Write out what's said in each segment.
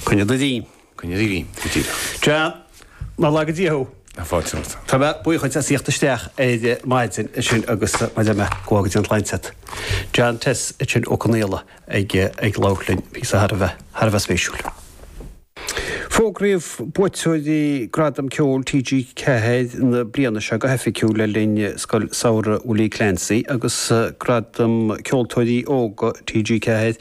Coinne do bhí. Coinne do bhí, go díreach. Sea, nár laga Dia thú. Tá fáilte romhat. Tá mé buíoch dhíot as thíocht isteach ar maidin ansin agus mhaith liom é. Go bhfága Dia an tsláinte agat. John Tess, ansin, Ó Conaola ag labhairt linn, bhí sé thar a bheith, thar a bheith spéisiúil. Fógraíodh buaiteoirí Gradam Ceoil TG4 na bliana seo go hoifigiúil le linn Scoil Samhraidh Willie Clancy agus Gradam Ceoltóirí Óga TG4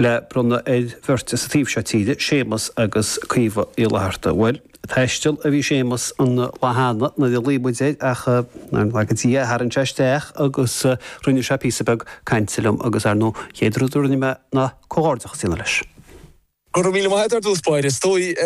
le bronnadh ar bheirt sa taobh seo tíre, Séamus agus Caoimhe Uí Fhlatharta. Bhuel, taisteal a bhí Séamus an lá cheana nuair a ghlaoigh muid air ach, nár laga Dia é, tharraing sé isteach agus rinne sé píosa beag cainte liom agus, ar ndóigh, an chéad rud a rinne mé ná comhghairdeachas a dhéanamh leis. Go raibh míle maith agat ar dtús báire. Is dóigh,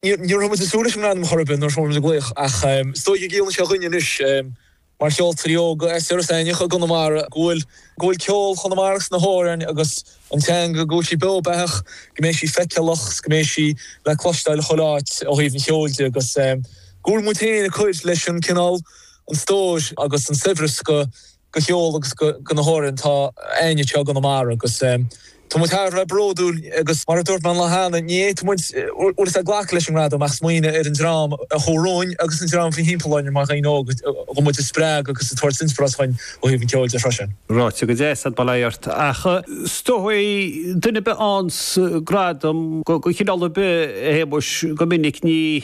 ní raibh muid ag súil leis an ngradam chor ar bith nuair a fuair muid an glaoch ach is dóigh go gciallann sé dhuinne anois, mar cheoltóirí óga as Iorras Aithneach i gConamara, go bhfuil ceol Chonamara is na hamhráin agus an teanga, go bhfuil sí beo beathach, go mbeidh sí feiceálach agus go mbeidh sí le cloisteáil i chuile áit ó thaobh an cheoil de agus go bhfuil muid féin ag cuir leis an cineál, an stór agus an saibhreas go go cheol agus go na hamhráin atá againn anseo i gConamara agus tá muid thar a bheith bródúil agus mar a dúirt mé an lá cheana ní fhéadfadh muid bhfuil a fhios a'd glacadh leis an ngradam ach smaoineamh ar an dream a chuaigh romhainn agus an dream a bhí thimpeall orainn mar dhaoine óga chun muid a spreagadh agus a tabhairt inspioráid dhúinn ó thaobh an cheoil de freisin. Ráite go deas a'd, bail ort, ach is dóichí duine ar bith a fhaigheanns gradam go chineál ar bith, Shéamuis, go minic, ní.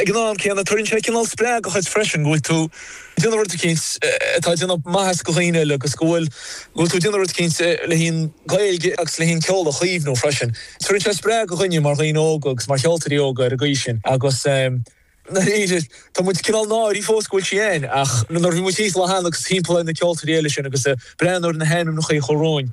Ag an am céanna, tugann sé cineál spreagadh dhuit freisin go bhfuil tú ag déanamh rud eicínt atá ag déanamh maitheas go dhaoine eile agus go bhfuil go bhfuil tú ag déanamh rud eicínt le haghaidh an Ghaeilge agus le haghaidh an ceol a chaomhnú freisin. Tugann sé spreagadh dhúinne mar dhaoine óga agus mar cheoltóirí óga ar an gcaoi sin agus ehm i ndáiríre tá muid cineál náirí fós go bhfuil sí ann ach nuair a bhí muid thíos an lá cheana agus thimpeall ar na ceoltóirí eile sin agus a' breathnú ar na hainmneachaí a chuaigh romhainn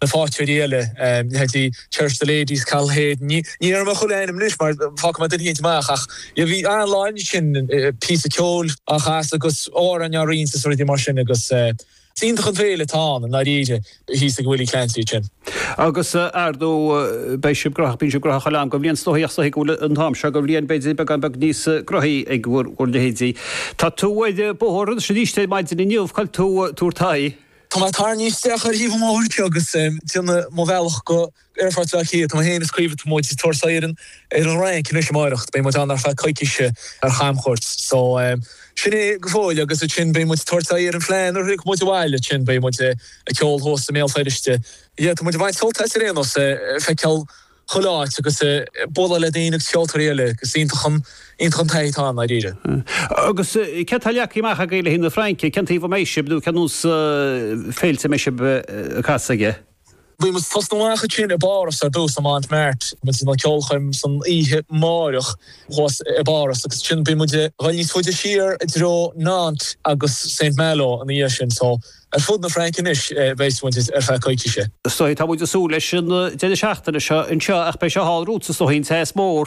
na faighteoirí eile, leithéidí Cherish the Ladies, Cathal Hayden, ní déarfaidh mé chuile ainm anois mar fágfaidh mé duine eicínt amach ach bhí an-lá ansin, píosa ceoil á chasadh agus amhráin á roinnt is rudaí mar sin agus is iontach an féile atá ann i ndáiríre thíos ag Willie Clancy ansin. Agus ar ndóigh, beidh sibh graitheach, bíonn sibh graitheach chuile am go bhliain is dóichí ach is dóichí go bhfuil an t-am seo de bhliain b'fhéidir beagán beag níos graitheaí ag bhur leithéidí. Tá tú ar bóthar anois arís ar maidin inniu, cá bhfuil tú ag tabhairt. Tá mé tarraingthe isteach ar thaobh an bhóthair anseo agus ag déanamh mo bhealach go Aerfort Bhaile Átha Cliath. Tá mé féin is Caoimhe, tá muid ag tabhairt aghaidh ar an Fhrainc anois amáireach. Beidh muid ann ar feadh coicíse ar chamchuairt. So, sin é go fóill agus ansin beidh muid ag tabhairt aghaidh ar an bhFleadh nuair a thiocfaidh muid abhaile. Ansin beidh muid ag ceol thuas i mBéal Feirste. Yeah, tá muid ag baint sult as ar aon nós, feiceáil. chuile áit agus bualadh le daoine agus ceoltóirí eile agus iontach an, iontach an taithí atá ann dáiríre. Agus céard atá leagtha amach agaibh le haghaidh na Fraince, cén taobh a mbeidh sibh nó cén sórt féilte a mbeidh sibh ag casadh aige? Beidh muid ag tosnú amach ansin i bPáras ar dtús i Montmartre, beidh muid ag an gceolchoirm san oíche amáireach thuas i bPáras agus ansin beidh muid ag dul níos faide siar i dtreo Nantes agus Saint Malo ina dhiaidh sin so, Ar fud na Fraince anois beidh muid ar feadh coicíse. Tá muid ag súil leis an deireadh seachtaine seo anseo ach beidh sé thall romhat sách te is dóigh.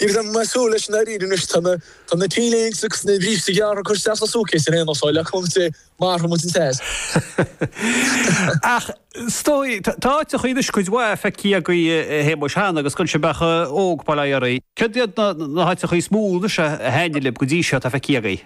Agus mé ag súil leis i ndáiríre anois tá na T-léinte agus na bríste gearra ag cur isteach sa suitcase ar aon nós, só le cúnamh Dé mairfidh muid an teas. Ach tá áiteachaí anois cuid mhaith feicthe agaibh a Shéamuis cheana agus gan sibh ach óg bail ó Dhia oraibh. Céard iad na háiteachaí is mó anois a thaitnigh libh go dtí seo atá feicthe agaibh?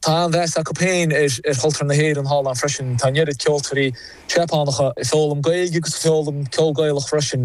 Tá an-mheas acu féin ar chultúr na hÉireann thall ann freisin. Tá an oiread ceoltóirí Seapánacha ag foghlaim Gaeilge agus ag foghlaim ceol Gaelach freisin.